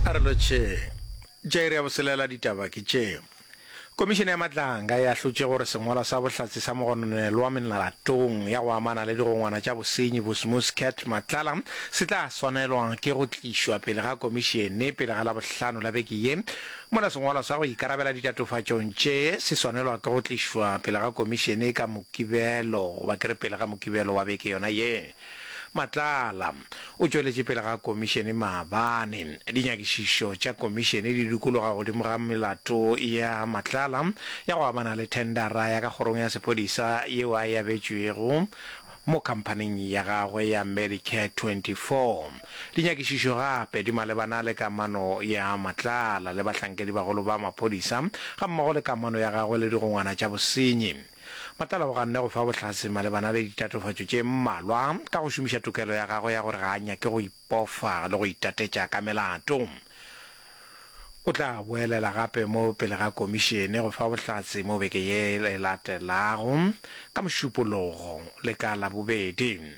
a re lotšheng jaire ya boselela ditaba ke tše komišene ya matlanga e ahlotše gore sengwalwa sa bohlatse sa mogononelwa melatong ya go amana le digongwana tša bosenyi bosmus cat matlala se tla swanelwa ke go tlišwa pele ga komišene pele ga labohlano la beke ye mola sengwalwa sa go ikarabela ditatofatšong tše se swanelwa ke go tlišwa pele ga komišene ka mokibelo goba ke re pele ga mokibelo wa beke yona ye Matlala o tšweletše pele ga Komišene maabane. Dinyakišišo tša Komišene di dikologa godimo ga melato ya Matlala ya go amana le thendara ya ka kgorong ya sepodisa yeo a e abetšwego mo khamphaning ya gagwe ya Medicare 24. Dinyakišišo gape di malebana le kamano ya Matlala le bahlankedi bagolo ba maphodisa gammogo le kamano ya gagwe le digongwana tša bosenyi. Matlala o ganne go fa bohlatse malebana le ditatofatšo tše mmalwa ka go šomiša tokelo ya gagwe ya gore ga a nyake go ipofa le go itatetša ka melato. O tla boelela gape mo pele ga Komišene go fa bohlatse mo beke ye e latelago, ka Mošupologo le ka Labobedi.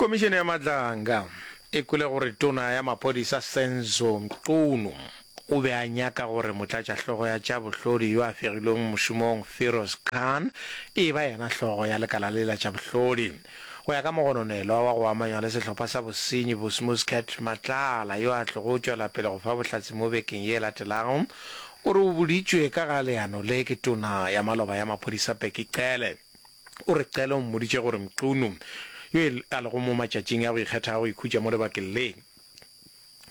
Komišene ya Madlanga e kwele gore tona ya maphodisa Senzo Mchunu o be a nyaka gore motlatšahlogo ya tša bohlodi yo a fegilweng mošomong Feroz Khan e ba yena hlogo ya lekala le la tša bohlodi. Go ya ka mogononelwa wa go amanywa le sehlopha sa bosenyi Busmuscat Matlala yo a tlogo tšwela pele go fa bohlatse mo bekeng ye e latelago, o re o boditšwe ka ga leano le ke tona ya maloba ya maphodisa Bheki Cele. O re Qele o mmoditše gore Mqunu, yo e a lego mo matšatšing a go ikgetha a go ikhutša mo lebakeng le,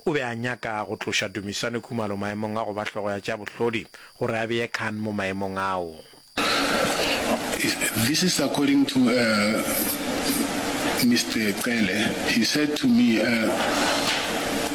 o be a nyaka go tloša Dumisani Khumalo maemong a go ba hlogo ya tša bohlodi gore a beye Khan mo maemong ao. This is according to Mister Qele, he said to me,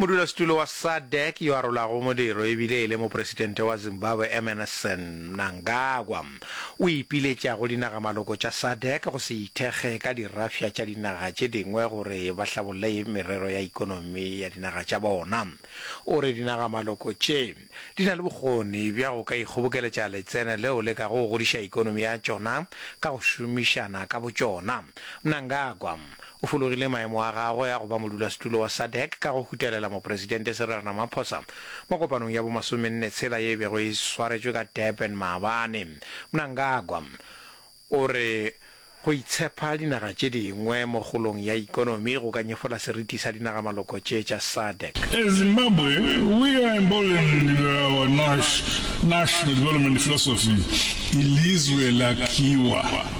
Modulasetulo wa SADC yo a rolago modiro e bile e le mopresidente wa Zimbabwe Emmerson Mnangagwa o ipiletša go dinagamaloko tša SADC go se ithekge ka dirafša tša dinaga tše dingwe gore ba hlabolle merero ya ikonomi ya dinaga tša bona. O re dinagamaloko tše di na le bokgoni bja go ka ikgobokeletša letseno leo le kago go godiša ikonomi ya tšona ka go šomišana ka botšona. Mnangagwa O fologile maemo a gagwe a go ba modulasetulo wa SADC ka go hutelela Mopresidente Cyril Ramaphosa mo kopanong ya bo masomenne tshela ye e bego e swaretšwe ka Durban maabane. Mnangagwa o re go itshepa dinaga tše dingwe mo kgolong ya ikonomi go ka nyefola seriti sa dinaga-maloko tše tša SADC. As Zimbabwe, we are emboldened with our nash, national development philosophy, Ilizwe lakhiwa.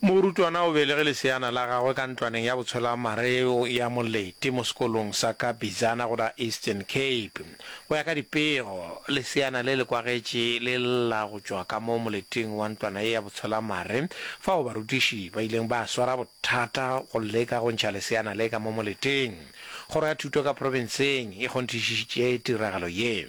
Morutwana o belege leseana la gagwe ka ntlwaneng ya botshwelamareo ya Moleti mo sekolong sa ka Bizana go la Eastern Cape. Go ya ka dipego, leseana le le kwagetše le lla go tšwa ka mo moleting wa ntlwana ye ya botshwelamare fao barutiši ba ileng ba swara bothata go leka go ntšha leseana le ka mo moleting. Kgoro ya Thuto ka profenseng e kgonthišišitše tiragalo ye.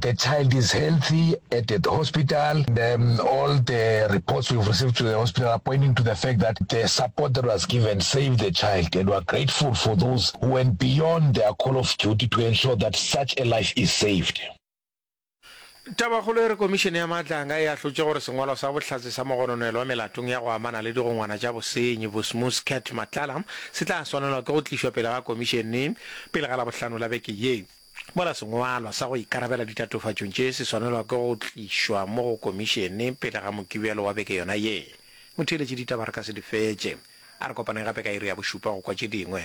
The child is healthy at the hospital. The, um, all the reports we've received to the hospital are pointing to the fact that the support that was given saved the child, and we're grateful for those who went beyond their call of duty to ensure that such a life is saved. Tabakgolo e re Komišene ya Maatlanga e ahlotše gore sengwalo sa bohlatse sa mogononelo wa melatong ya go amana le digongwana tša bosenyi Bosmus Cat Matlala se tla swanelwa ke go tlišwa pele ga Komišene pele ga Labohlano la beke ye. Mola sengwalwa sa go ikarabela ditatofatšong tše se swanelwa ke go tlišwa mo go Komišene pele ga Mokibelo wa beke yona ye. Motheeletši ditaba re ka se di fetše. A re kopaneng gape ka iri ya bošupa go kwa tše dingwe.